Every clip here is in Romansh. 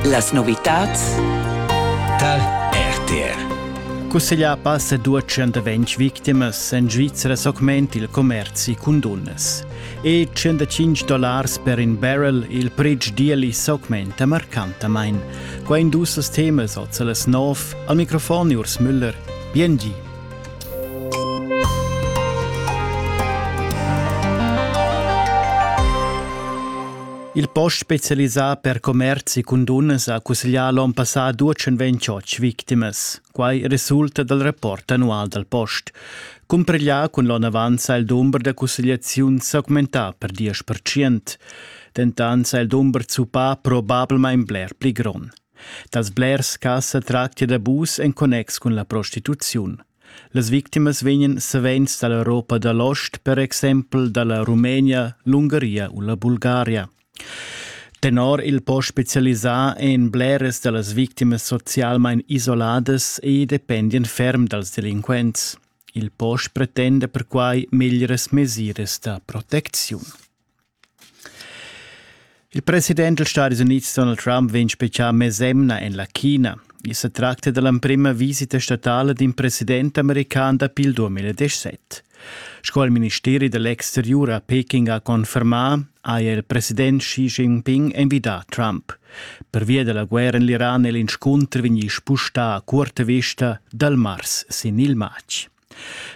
Las novitads tar RTR. Cusseglià passa 220 victimas en Svizra s'augment il commerzi cun dunnas. E 105 dollars per in barrel il pretsch d'ieli s'augmenta marcantamain. Qua in duas temas als las 9 al microfon Urs Müller. Biengi. Il post specialisà per commerzi cun dunnas ha cusseglià l'onn passà 228 victimas. Quai resulta dal rapport annual dal post. Cumpareglià cun l'onn avant sa il dumber da cussegliaziun s'augmentà per 10%. Dentant sa il dumber zuppà probablmain bler pli grond. Dals blers cas sa tractia d'abus en connex cun la prostituziun. Las victimas vegnan savens da l'Europa da l'ost, per exempel da la Rumenia, l'Ungaria u la Bulgaria. Tenor il post specialisà èn bleras da las victimas socialmain isoladas e dependian ferm dals delinquents. Il post pretenda perquai meglieras mesiras da protecziun. Il president dals Stadis Unids Donald Trump vegn spetgà mesemna en la China. I sa tracta da l'emprima visita statala d'in president american dapi il 2017. Sco il ministeri da l'exteriur a Peking ha confermà, haja il president Xi Jinping envidà Trump. Pervia da la guerra en l'Iran è l'inscunter vegnì spustà a curta vista dal mars sin il matg.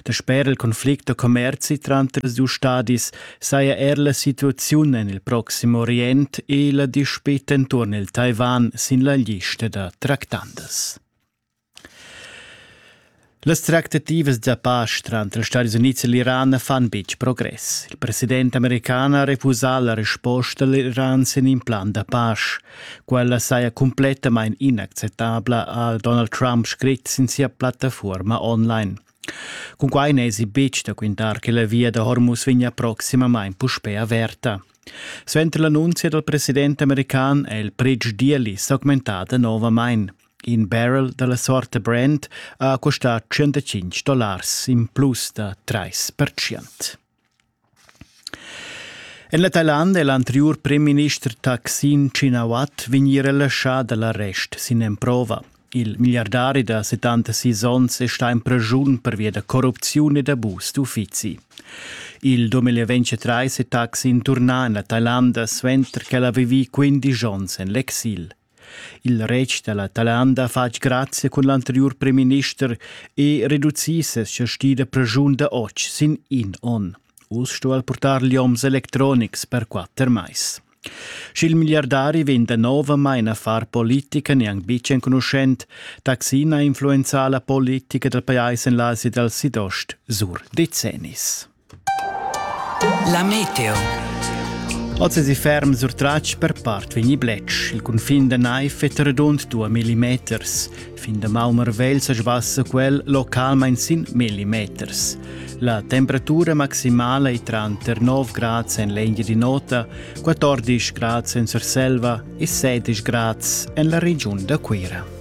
Dasper il conflict da commerzi tranter ils dus stadis saja er la situaziun en il Proxim Orient e la dispita enturn il Taiwan sin la lista da tractandas. Las tractativas da pace tranter ils Stati Units e l'Iran fan betg progress. Il president american ha refusà la resposta a l'Iran sin in plan da pace. Quella saja cumplettamain inacceptabla, ha Donald Trump scrit sin sia plattafuorma online. Cunquai n'èsi betg da quintar che la via da Hormuz vegnia proximamain puspè averta. Suenter l'annunzia dal president american è il Bridge Deal s'augmentà novamain. In barrel dalla sorte Brand ha costà 105 dollars in plus da 3%. En la Thailanda è l'anteriur primminister Thaksin Shinawat vegnì relaschà da l'arrest sin emprova. Il milliardari da 76 onns è stà en praschun pervia da corrupziun ed abus d'uffizi. Il 2023 è Thaksin turnà en la Thailanda suenter ch'el ha vivì 15 onns en l'exil. Il retg da la Talanda ha fatg grazia cun l'anteriur premierminister e reducì ses chasti da praschun da otg sin in onn. Uss sto el purtar lioms electronics per quatter mais. Sch'il miliardari vegn da novamain a far politica neanc betg enconuschent, Taksin ha influenzà la politica dal pajais en l'Asia dal Sidost sur decennis. La meteo. Oz è ferm surtratg per part vegni bletsch. Il cunfin da naiv è redund 2 millimeters. Fin da Malmervel sa sbassa quel localmain sin millimeters. La temperatura maximala è tranter 9 grads en l'Engia di Nota, 14 grads en Surselva e 16 grads en la regiun da Cuira.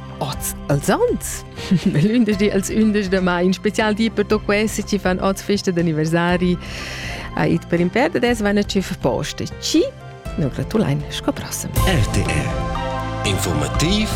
Oz als ans? L'ündesch als ündesch da mai, in special di per to questi ci fan oz festa d'anniversari a it per imper da des vanna ci poste. Ci? Nur gratulein, sco prossem. RTR Informativ